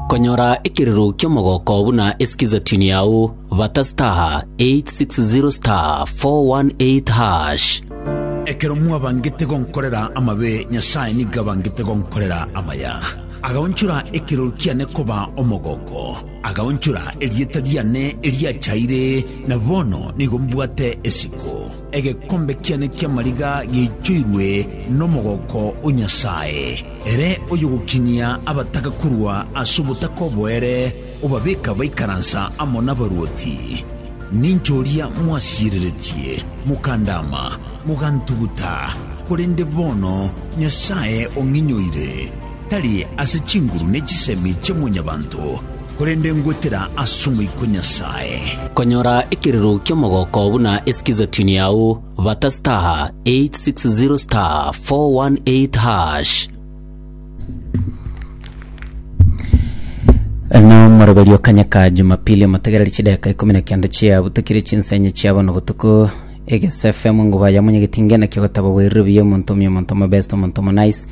Konyora ekirero ki'omogooko buna esikiza tune yao, bata star 860 star 418 hash. Ekero mwabangete gonkorera amabe, Nyasae nigo abangete gonkorera amaya. Agaonchora ekirori kiane koba omogooko, agaonchora erieta riane eriachaire, na bono nigo mbwate esiko. Egekombe kiane ki'amariga giaichoirwe nomogooko o Nyasae, ere oyogokinia abataka korwa ase obotaka oboere, obabeka baikaransa amo nabaruoti. Ninche oria mwasiyereretie, mokandaama, mogantuguta, korende bono Nyasae ong'inyoire. tari ase chinguru ne chisemi chia mwanyabanto, korende ngwetera ase omoika o Nyasae. Konyora ekirero ki'omogoko buna es'kizatuni yao, bata *860*418#. Na omoroberio kanyaka jumapili omotegereri chideka ikomi na kenda chia butakire chinsa enye chia bono botuko egesfm nguba ya munyegetinge nakio gotaba bwerire buya omonto omi omonto omobesto omonto omonais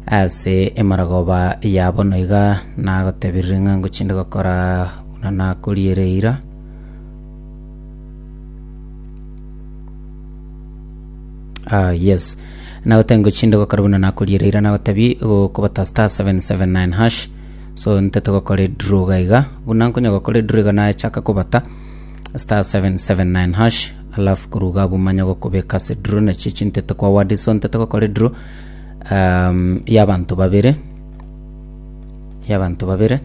Ase emorogoba ya bono iga nagotebirie ng'a ngochinde gokora buna nakoriire eira. Ah, yes. Nagotebia ngochinde gokora buna nakoriire eira, nagotebia gokobata star 779 hash. So ntete gokora edraw iga iga. Buna nkonya gokora edraw iga nachaka kobata star 779 hash, alafu korwa iga abwo manye gokobeka ase draw, nachiche chintete kwa word, so ntete gokora edraw. um, y'abanto babere y'abanto babere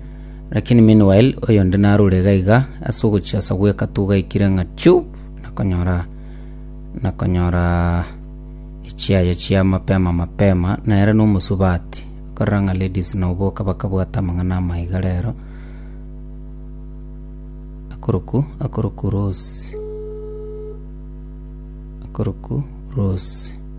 lakini meanwhile oyonde narure iga iga ase ogochia asa gweka tugaikire ng'a chu nakonyora nakonyora echiaye chia mapema mapema nere nomosubati korora ng'a ladies nao boka bakabwata amang'ana amaiga rero akoroku akoroku rose akoroku rose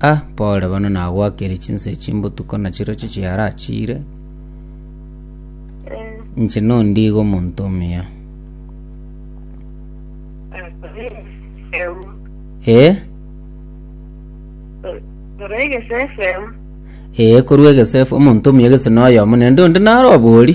Ah, pole bono nagwakire chinsa echi mbotuko na chirochio chiarachire inche nondigo omonto omuya ee ee korwa egesefu omonto omuya gese noyomo nende onde naro obori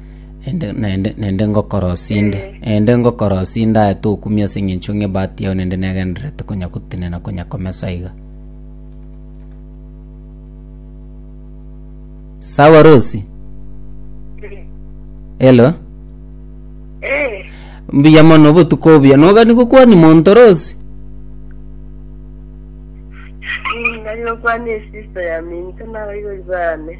Naende, naende, naende ngokorosia inde, naende ngokorosia inde aye tokumia ase eng'encho ng'a ebahati yao naende negendererete konya gotenena konya komesa iga. Sawa Rosi? Hello? Eh, Mbuya mono obotuko obuya. Nogani gokwania monto Rosi? nari gokwana esister ya minto nabaibori bane.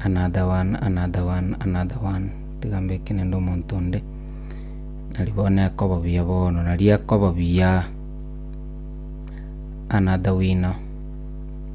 Another one, another one, another one. Tiga mbeke nende omonto onde. Nari bono nekoba buya bono, nari ekoba buya. Another winner.